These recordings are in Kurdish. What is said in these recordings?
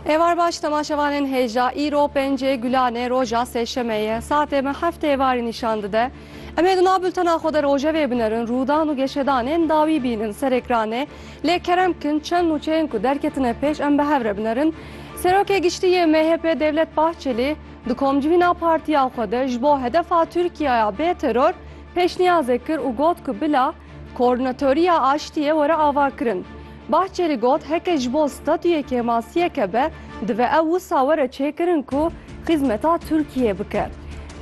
Êvar baş temaşevanên hêja îro pêncê Gulanê roja sêşemê ye. Saetê me heft êvarî nîşan dide. Em ê di nav bultena xwe de rojevê binerin, rûdan û geşedanên dawî bînin ser ekranê. Lê kerem bikin çend nûçeyên ku derketine pêş em bi hev re binerin. Serokê Giştî yê MHP'ê Devlet Bahçelî di komcivîna partiya xwe de ji bo hedefa Tirkiyaya bê teror pêşniyazek kir û got ku bila Koordinatoriya Aştiyê were avakirin. Bahçelî got heke ji bo statuyê kêmasiyeke be divê ew wisa were çêkirin ku xîzmeta Tirkiyeyê bike.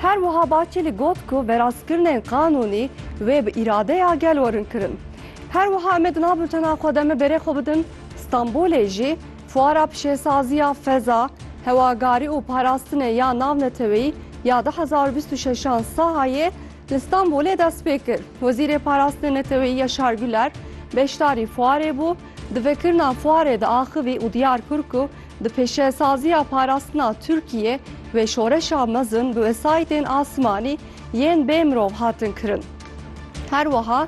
Her wiha Bahçelî got ku verastkirinên qanûnî wê bi îradeya gel werin kirin. Her wiha em ê di nav bultena xwe de me berê xwe bidin Stenbolê jî fuara pişêsaziya feza, hewagarî û parastinê ya navneteweyî ya du hezar û bîst û şeş an Sahayê Li Stenbolê dest pê kir. Wezîrê Parastinê Neteweyî Yaşar Güler beşdarî fuarê bû. Di vekirina fuarê de axivî û diyar kir ku di pêşesaziya parastina Tirkiyê wê şoreşa mezin bi wesayîtên asimanî yên bê mirov hatin kirin. Her wiha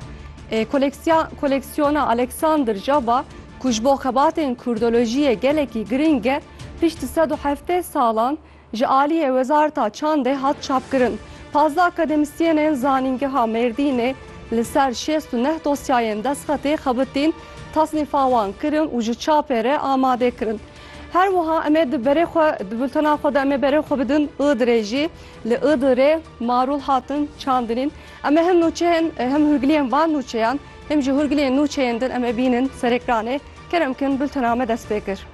koleksiyona Alexander Jaba ku ji bo xebatên kurdolojiyê gelekî girîng e, pişt sed û heftê salan Ji aliyê Wezareta Çandê hat çapkirin, pazdeh akademîsyênên Zanîngeha Mêrdînê li ser şêst û neh dosyayên destxetê xebitîn, tasnîfa wan kirin û ji çapê re amade kirin. Her wiha em ê di berê xwe di bultena xwe de em ê berê xwe bidin Iğdırê jî. Li Iğdırê marûl hatin çandinîn. Em ê him nûçeyên him hûrgiliyên van nûçeyan him jî hûrgiliyên nûçeyên din em ê bînin serekranê. Kerem kin bultena me dest pê kir.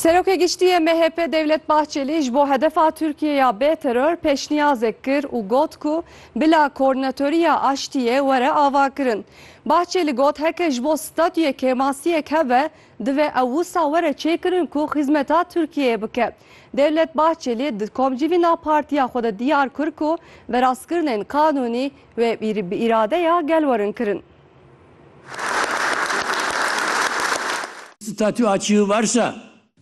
Serokê Giştî yê MHP Dewlet Bahçelî ji bo hedefa Tirkiyê ya bê teror pêşniyazek kir û got ku bila Koordinatoriya Aştiyê were avakirin. Bahçelî got heke ji bo statuyê kêmasiyek hebe Divê ew wisa were çêkirin ku xîzmeta Tirkiyeyê bike. Dewlet Bahçelî di komcivîna partiya xwe de diyar kir ku verastkirinên qanûnî wê bi îradeya gel werin kirin. Statû a çîyû varsa.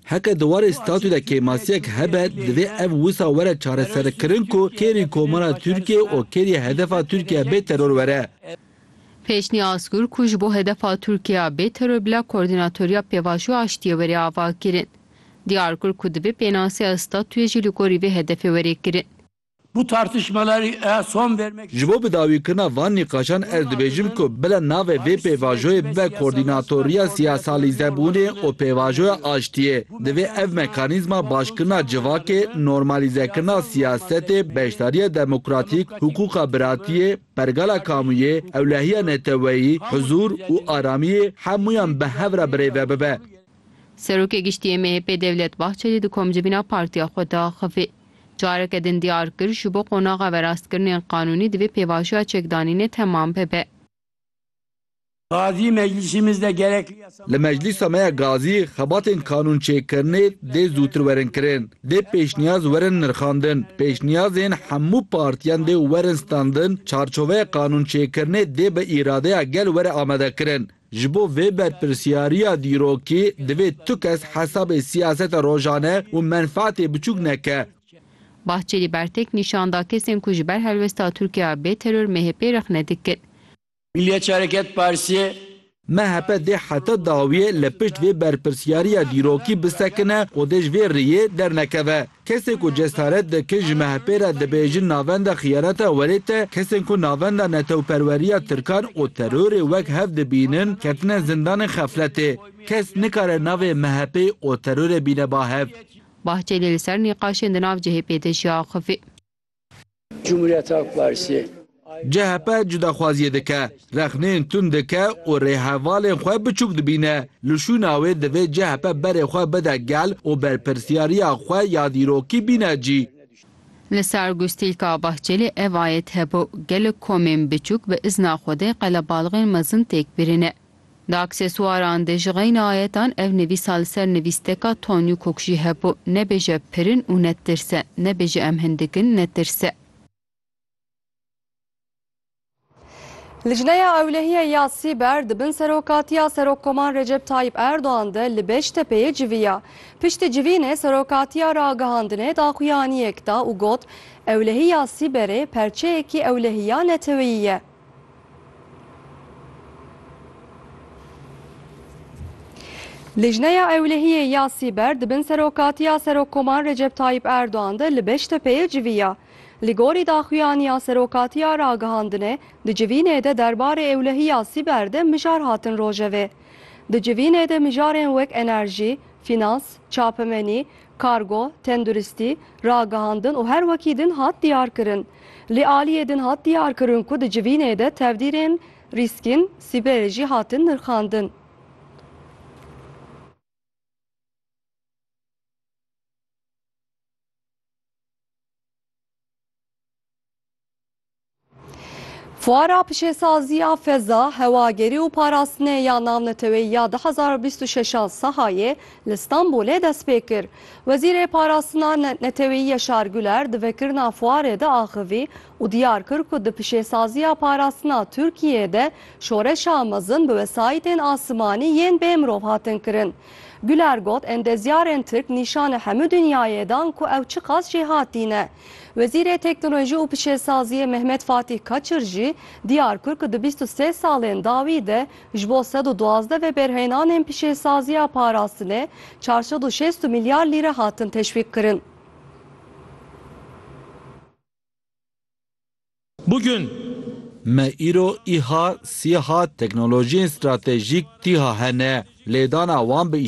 Heqê di warê statû de kêmasiyek hebe, divê ev wisa were çareserkirin ku kêrî Komara Tirkiyeyê û kêrî hedefa Tirkiye bê teror were. Pêşnî Asgur ku ji bo hedefa Tirkiya bê teror bila Koordînatoriya Pêvajoya Aştiyê were avakirin. Diyar kir ku divê pênaseya statuyê jî li gorî vê hedefê were kirin. Bu tartışmaları a son vermek Ji bo bidawîkirina van nîqaşan ez dibêjim ku bila navê vê pêvajoyê bibe Koordînatoriya Siyasalîzebûnê û Pêvajoya Aştiyê. Divê ev mekanîzma başkirina civakê, normalîzekirina siyasetê, beşdariya demokratîk, hukûqa biratiyê, Pergala Kamûyê, ewlehiya neteweyî, huzûr û aramiyê hemûyan bi hev re birêve bibe. Serokê Giştî yê MHP'ê Devlet Bahçelî di komcivîna partiya xwe de axivî. Careke din diyar kir, ji bo qonaxa verastkirinên qanûnî divê pêvajoya çekdanînê temam bibe. Gazî, Meclîsîmiz de gerekli yasa. Li Meclîsa me ya Gazî xebatên qanûnçêkirinê dê zûtir werin kirin. Dê pêşniyaz werin nirxandin. Pêşniyazên hemû partiyan dê werin standin, çarçoveya qanûnçêkirinê dê bi îradeya gel were amadekirin. Ji bo vê berpirsyariya dîrokî divê tu kes hesabê siyaseta rojane û menfaetê biçûk neke. Bahçelî bertek nîşan da kesên ku ji ber helwesta Tirkiya bê teror MHP'ê rexne dikin. Milliyetçi Hareket Partisi, MHP dê heta dawiyê li pişt vê berpirsyariya dîrokî bisekine û dê ji vê rêyê dernekeve. Kesê ku cesaret dikin ji MHP'ê re dibêjin navenda xiyaneta werê te kesên ku navenda netewperweriya tirkan û terorê wek hev dibînin ketine zindanên xefletê. Kes nikare navê MHP'ê û terorê bîne bahev. Bahçelî li ser nîqaşên di nav chp de jî axivî. Cumhuriyet Halk Partisi CHP cudaxwaziyê dike, rexneyên tund dike û rêhevalên xwe biçûk dibîne. Li şûna wê divê CHP berê xwe bide gel û berpirsyariya xwe ya dîrokî bîne cî. Li ser gustîlka Bahçelî ev ayet hebû, Gelek komên biçûk bi izna Xwedê qelebalixên mezin têk birîne. Di aksesuaran de ji xeyna ayetan ev nivîsa li ser nivîsteka Tonyukok jî hebû, Nebêje pirin û netirse, nebêje em hindik in, netirse. Lijneya Ewlehîyê ya Sîber di bin serokatiya Serokkoman Recep Tayyîp Erdogan de li Beştepeyê civiya. Piştî civînê serokatiya ragihandinê daxuyaniyek da û got, Ewlehîya Sîberê perçeyekî ewlehîya neteweyî ye. Lijneya Ewlehiyê ya Sîber di bin serokatiya Serokkoman Recep Tayyîp Erdogan de li Beştepeyê civiya. Li gorî daxuyaniya Serokatiya Ragihandinê di civînê de derbarê ewlehiya sîber de mijar hatin rojevê. Di civînê de mijarên wek enerjî, fînans, çapemenî, Kargo, tenduristî, ragihandin û her wekî din hat diyarkirin. Li aliyê din hat diyarkirin ku di civînê de tevdîrên rîskîn sîberê jî hatin nirxandin. Fuara pişêsaziya feza, hewagerî û parastinê ya navneteweyî ya du hezar û bîst û şeş a Sehayê li Stenbolê dest pê kir. Wezîrê Parastina Neteweyî Yaşar Güler di vekirina fuarê de axivî û diyar kir ku di pişêsaziya parastina Tirkiyeyê de şoreşa mezin bi wesayîtên asimanî yên bê mirov hatin kirin. Güler got, endezyarên Tirk nîşanê hemû dinyayê dan ku ew çiqas jêhatî ne. Wezîrê Teknolojî û Pişesaziyê Mehmet Fatîh Kaçir jî diyar kir ku di bîst û sê salên dawî de ji bo sed û duwazdeh vebêrheynanên pişesaziya parastinê çar sed û şêst û milyar lîre hatin teşwîqkirin. Bugün. Me îro îha, sîha, teknolojiyên stratejîk tîha hene. Lêdana wan bi